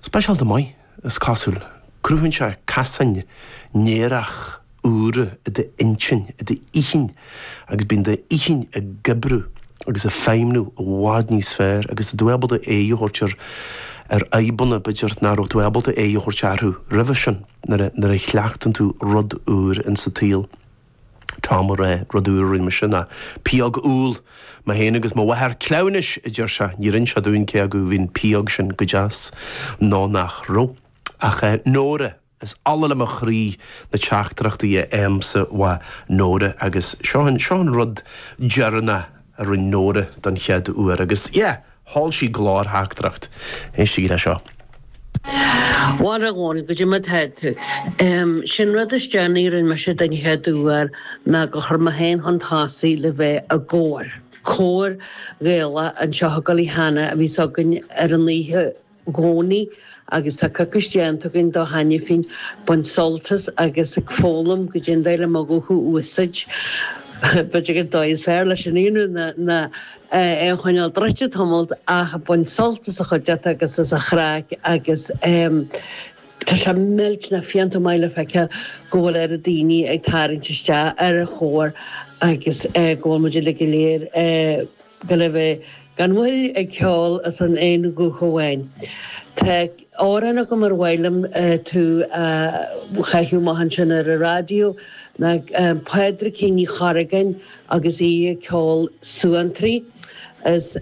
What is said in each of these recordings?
Speisialta maith, is cosúil. Cruthaíonn sé casáin néarach úra i d'intinn, i d'inchinn, agus bíonn d'inchinn ag oibriú agus ag feidhmniú i bhfad níos fearr agus tá tú ábalta aghaidh a thabhairt ar ar fhadhbanna, b'fhéidir, nach raibh tú ábalta aghaidh a thabhairt orthu roimhe sin nuair a chleachtann tú rud úr insa tsaol. Tá mo ré rud úr a rinn mise ná pióg úll. Mé féin agus mo mháthair cleamhnais, a deir sé, níor inis sé dúinn cé acu bhí an pióg sin go deas nó nach raibh. Ach eh, Nóra, is ola le mo chroí na teachtaireachtaí a fhaighimse uaidh Nóra agus seo an, seo an rud deireanach a rinn Nóra don chéad uair agus yeah! Sheol sí glórtheachtaireacht. Éistigí le seo. Mharaigh an goidé mar atá tú. Sé'n rud is déanaí a rinne mise den chéad uair ná gur chuir mé féin chun tosaigh le bheith i gcór, Cór Gaelach an tSeothagallaigh cheana a bhí s'againn ar an oíche, gcónaí agus tá coicís déanta againn de cheana féin, baint sult as agus ag foghlaim goidé an dóigh le mo ghuth a úsáid. B'fhéidir an dóigh is fearr le sin a dhéanamh ná é a choinneáil druidte tamall ach baint sult as an chuideachta agus as an chraic agus tá sé millteanach fiánta maith le feiceáil go bhfuil oiread daoine ag tarraingt isteach ar an chór agus go bhfuil muid uilig go léir ag gabháil a bheith gan mhoill ag ceol as an aon ghuth amháin. Tá amhrán agam ar mhaith liom tú a chaitheamh amach ansin ar an raidió ná Pádraigín Ní Chorragáin agus í ag ceol Suantraí. Is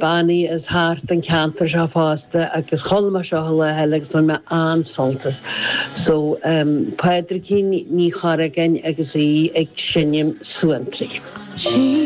bean í as thart an ceantar seo fosta agus chuala mé seo an lá eile agus bhain mé an-sult as. So, Pádraigín Ní Chorragáin agus í ag seinm Suantraí.